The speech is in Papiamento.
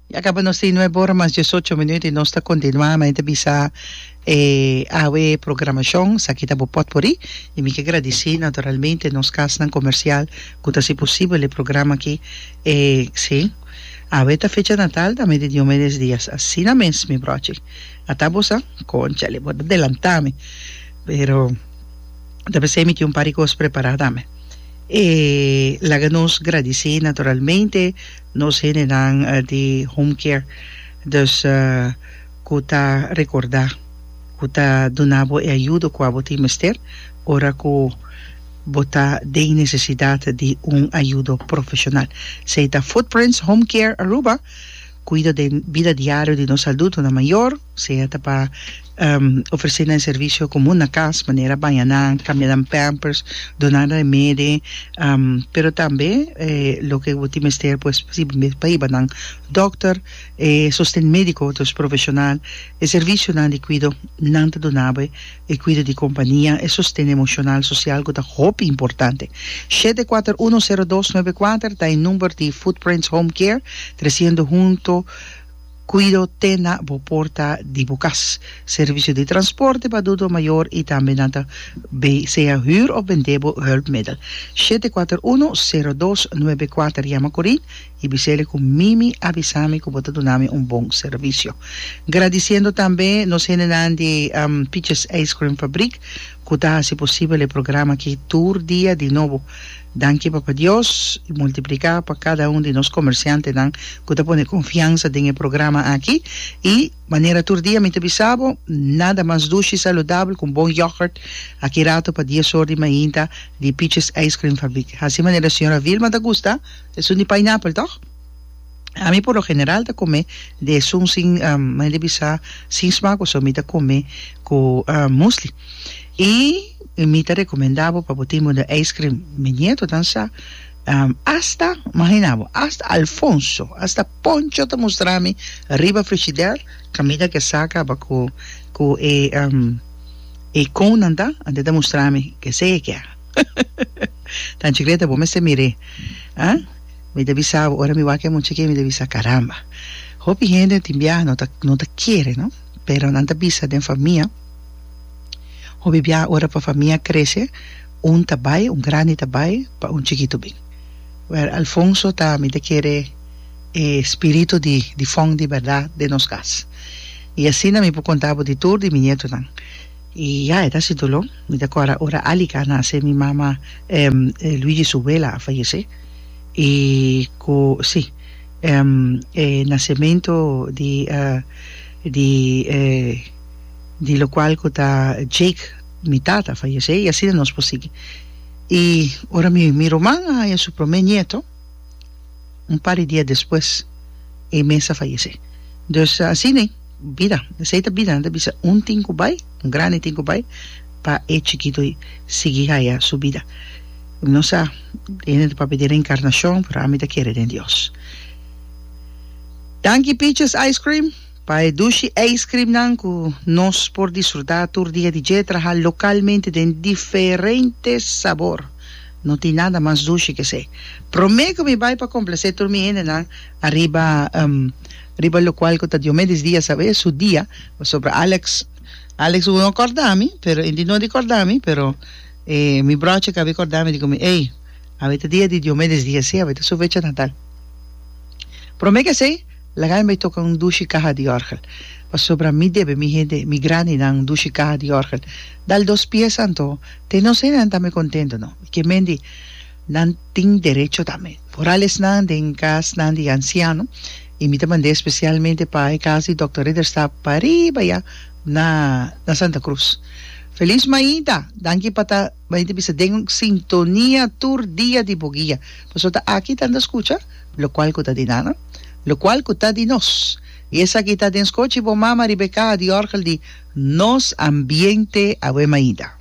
Ya caba nos tin nuebe ora mas diesocho minuut y nos ta continua mi ta bisa e awe programacion esaki ta bo pot por ey y mi ke gradici naturalmente nos casnan comercial cu ta haci posibel e programa aki e si awe ta fecha natal tambe di Diomedes Diaz asina mes mi brochi ata bo sa conchale bo ta delanta mi pero ta p'esey mi tin un par di cos prepara tambe e laga nos gradici naturalmente Nos hendenan di Home Care dus ku ta rekordá ku ta duna bo e ayudo kua bo tin mester ora ku bo ta den nesesidat di un ayudo profeshonal. Esei ta Footprints Home Care Aruba, kuido den bida diario di nos aldutonan mayor, sea ta pa Ofresé nan servisio komun na kas, manera baña nan, kambia nan pampers, duna nan remedi, pero tambe loke bo tin mester pues si bo mes pa hiba nan dòkter, e sosten médiko di nos profeshonal, e servisionan di kuido nan ta duna bo e kuido di kompania, e sosten emoshonal, sosial ku ta hopi importante. Shete kuater uno sero dos nuebe kuater ta e number di Footprints Home Care, tresiendo hunto. Cuido te na bo porta di bo cas. Servicio di transporte pa adulto mayor y tambe nan ta bay sea huur of bende bo hulpmiddel. Shete kuater uno, sero dos, nuebe kuater Yama Corin y bisele cu Mimi a bisa mi cu bo ta duna mi un bon servicio. Gradiciendo tambe nos hendenan di Piches Ice Cream Fabriek. cu ta haci posibel e programa aki tur dia di nobo. Danki Papa Dios i multiplica pa cada un di nos comerciantenan cu ta pone confiansa den e programa aki. I manera tur dia mi ta bisa bo, nada mas dushi, saludabel cu un bon yoghurt aki rato pa dies or di mainta di Peaches Ijscreamfabriek. Haci manera Señora Vilma ta gusta, esun di pineapple, toch? Ami por lo general ta come de esun sin maya di bisa sin smaak pasobra mi ta come cu musli y mi ta recomenda bo pa bo tin bo den ijskrim mi nietonan sa hasta magina bo hasta Alfonso hasta Poncho ta mustra mi riba frigider camina ke saca cu cu e e cone nan ta ante ta mustra mi kese ke ta chicleta bo mester mire. Mi ta bisa bo, ora mi wak e mucha ke mi ta bisa caramba. Hopi hende tin biaha no ta no ta kere no, pero nan ta bisa den famia, hopi biaha ora pa famia krese un ta bai, un grandi ta bai pa un chikito bin. Wèl, Alfonso ta mi ta kere e spirito di di fòn di bèrdat den nos kas. I asina mi por konta bo di tur di mi nietonan. I ya e ta hasi doló, mi ta kòrda ora Alica a nase mi mama, Luigi su wela a fayesé. i ku si e nasementu di di di lokual ku ta Jake mi tata fayesé i asina nos por sigui i ora mi mi ruman a haña su promé nieto un par di dia despues e mes a fayesé dus asina. Bida, esei ta bida, nan ta bisa un tin ku bai, un grandi tin ku bai, pa e chikito sigui haya su bida. No sa, e hende ta papia di reinkarnashon, pero ami ta kere den Dios. Danki Peaches Ice Cream pa e dushi ice creamnan ku nos por disfrutá tur dia di dje, traha lokalmente den diferente sabor. No tin nada mas dushi ke esei. Promé ku mi bai pa komplase tur mi hendenan ariba Riba locual cu ta Diomedes Diaz awe su dia pasobra Alex Alex hubo no corda mi pero e di no di corda mi pero e mi broce cabe corda mi di cu mi ey awe ta dia di Diomedes Diaz si awe ta su fecha natal prome ke esey laga mi bay toca un dushi caha di orgel pasobra mi debe mi hende mi grandinan un dushi caha di orgel dal dos pieza anto te no esey nan ta me contento no mi ke mendi Nan tin derecho tambe. Moralesnan den kasnan di ansiano i mi ta mand'é spesialmente pa e kas di Dòkter Ridderstap pa riba ya na na Santa Cruz. Felis mainta! Danki pa ta mainta bisa den sintonia tur dia di bo guia. Pasobra ta aki ta anda skucha lokual ku ta di nan, lokual ku ta di nos. I esaki ta den skochi bo mama riba e kaha di òrgel di Nos Ambiente. Aweh mainta!